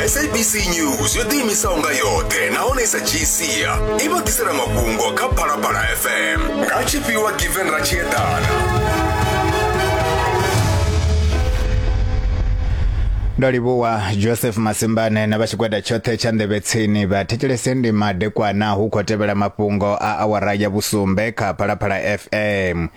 sabc news yo ḓiimisaho nga yoṱhe nahone i sa dzhii sia i vha ḓisela mafhungo kha phalaphala fm nga tshifhiwa given ra tshi eḓana ndo livhuwa joseph masimbane na vha tshigwada tshoṱhe tsha nḓevhe tsini vha thetshelese ndi madekwana hu khou tevhela mafhungo a awara ya vhusumbe kha phalaphala fm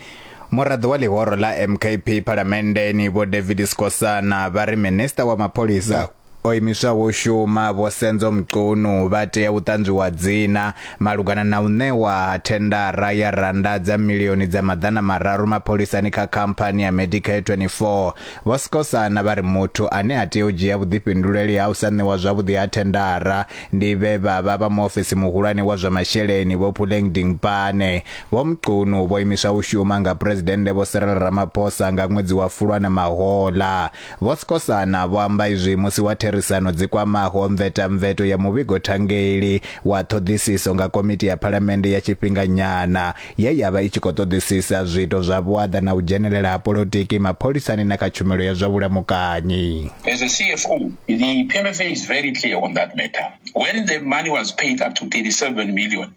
Muraḓo wa ḽihoro ḽa MKP phalamenndeni Vho David Skosana vha ri minista wa mapholisa o imiswaho u shuma Vho Senzo Mchunu vha tea u ṱanzwiwa dzina malugana na u ṋewa ha thendara ya rannda dza milioni dza maḓana mararu mapholisani kha khamphani ya Medicare 24. Vho Skosana vha ri muthu ane a tea u dzhia vhuḓifhinduleli ha u sa ṋewa zwavhuḓi ha thendara ndi vhe vha vha vha muofisi muhulwane wa zwa masheleni Vho Puleng Dingpane Vho Mchunu vho imiswa u shuma nga Phuresidennde Vho Cyril Ramaphosa nga ṅwedzi wa Fulwana mahoḽa. Vho Skosana vho amba izwi musi wa therisano dzi kwamaho mvetamveto ya muvhigo thangeli wa ṱhoḓisiso nga Komiti ya Phalamennde ya Tshifhinganyana ye ya vha i tshi khou ṱoḓisisa zwiito zwa vhuaḓa na u dzhenelela ha polotiki mapholisani na kha tshumelo ya zwa vhulamukanyi. As a CFO, the PMFA is very clear on that matter. When the money was paid up to 37 million,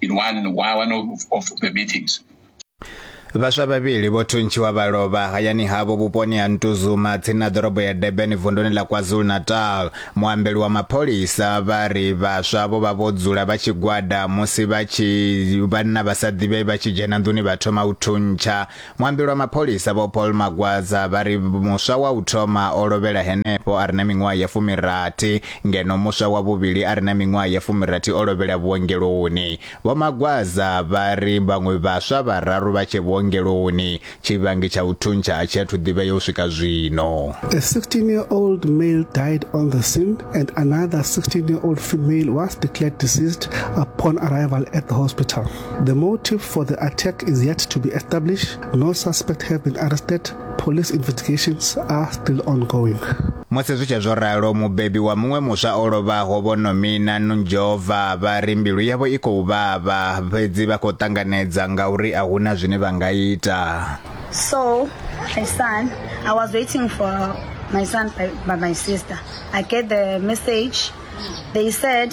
in one, one of, of the meetings. vhaswa vhavhili vho thuntshiwa vha lovha hayani havho vhuponi ha ntuzuma tsini na ḓorobo ya durban vunduni ḽa kwazulu-natal muambeli wa mapholisa vha ri vhaswa vho vha vho dzula vha tshigwada musi vha tshi vhanna vha sa ḓivhei vha tshi dzhena nḓuni vha thoma u thuntsha Muambi lwa mapholisa Vho Paul Magwaza vha ri muswa wa u thoma o lovhela henefho a re na miṅwaha ya fumirathi ngeno muswa wa vhuvhili a re na miṅwaha ya fumirathi o lovhela vhuongeloni. Vho Magwaza vha ri vhaṅwe vhaswa vhararu vha tshe vhuongeloni, tshivhangi tsha u thuntsha a tshi athu ḓivhea u swika zwino. A 16-year-old male died on the scene and another 16-year-old female was declared deceased upon arrival at the hospital. The motive for the attack is yet to be established. No suspect have been arrested. Police investigations are still ongoing. musi zwi tshe zwo ralo mubebi wa muṅwe muswa o lovhaho vho nomina nunjova vha ri mbilu yavho i khou vhavha fhedzi vha khou ṱanganedza ngauri a huna zwine vha nga ita so my son i was waiting for my son by, by my sister i get the message they said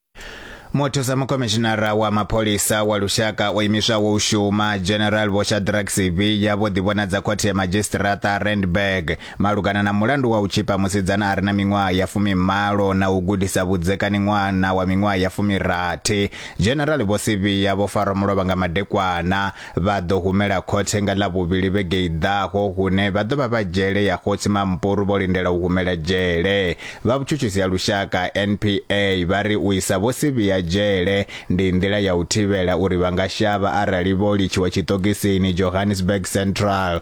muthusa mukomishinara wa mapholisa wa lushaka o imiswaho u shuma general vho shadrack siviya vho ḓivhonadza khothe ya madzhisitirata randburg malugana na mulandu wa u tshipa musidzana a re na miṅwaha ya fumimalo na u gudisa vhudzekani ṅwana wa miṅwaha ya fumirathi general vho siviya vho farwa mulovha nga madekwana Vha ḓo humela khothe nga Ḽavhuvhili vhege i ḓaho hune vha ḓo vha vha dzhele ya Khotsi Mampuru vho lindela u humela dzhele. Vha Vhutshutshisi ha Lushaka, NPA, vha ri u isa Vho Sibiya dzhele ndi nḓila ya u thivhela uri vha nga shavha arali vho litshiwa tshiṱokisini Johannesburg Central.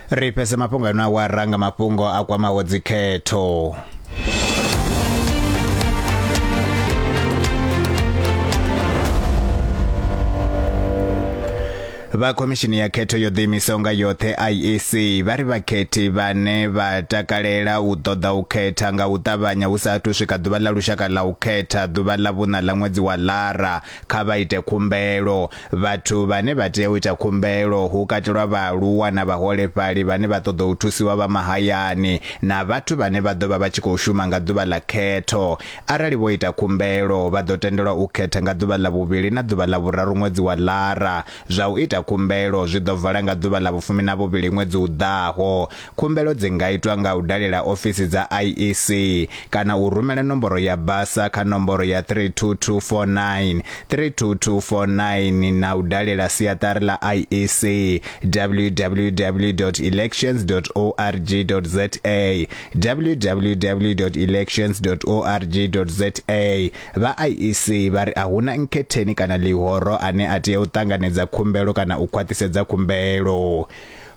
ri fhese mafhungo ano awara nga mafhungo a kwamaho dzikhetho vha khomishini ya khetho yo ḓiimisaho nga yoṱhe IEC vha ri vhakhethi vhane vha takalela u ṱoḓa u khetha nga u ṱavhanya hu sa athu swika ḓuvha ḽa lushaka ḽa u khetha ḓuvha ḽa vhuṋa ḽa ṅwedzi wa lara Kha vha ite khumbelo. Vhathu vhane vha tea u ita khumbelo hu katelwa vhaaluwa na vhaholefhali vhane vha ṱoḓa u thusiwa vha mahayani na vhathu vhane vha ḓo vha vha tshi khou shuma nga ḓuvha ḽa khetho. Arali vho ita khumbelo, vha ḓo tendelwa u khetha nga ḓuvha ḽa vhuvhili na ḓuvha ḽa vhuraru ṅwedzi wa Lara. Zwa u ita khumbelo zwi ḓo vala nga ḓuvha ḽa vhufumi na vhuvhili ṅwedzi u ḓaho. Khumbelo dzi nga itwa nga u dalela ofisi dza IEC kana u rumela nomboro ya basa kha nomboro ya 32249, 32249 na u dalela siaṱari ḽa IEC, www.elections.org.za, www.elections.org.za. Vha IEC vha ri a huna nkhetheni kana ḽihoro ane a tea u ṱanganedza khumbelo kana u khwaṱhisedza khumbelo.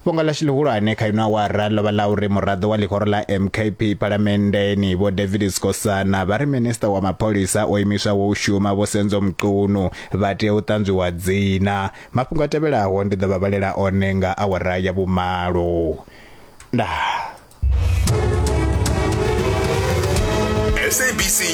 Fhungo ḽashu ḽihulwane kha ino awara ḽo vha ḽa uri muraḓo wa ḽihoro ḽa MKP Phalamenndeni Vho David Sikhosana vha ri Minisiṱa wa Mapholisa o imiswaho u shuma Vho Senzo Mchunu vha tea u ṱanzwiwa dzina. Mafhungo a tevhelaho ndi ḓo vha vhalela one nga awara ya vhumalo. Ndaa.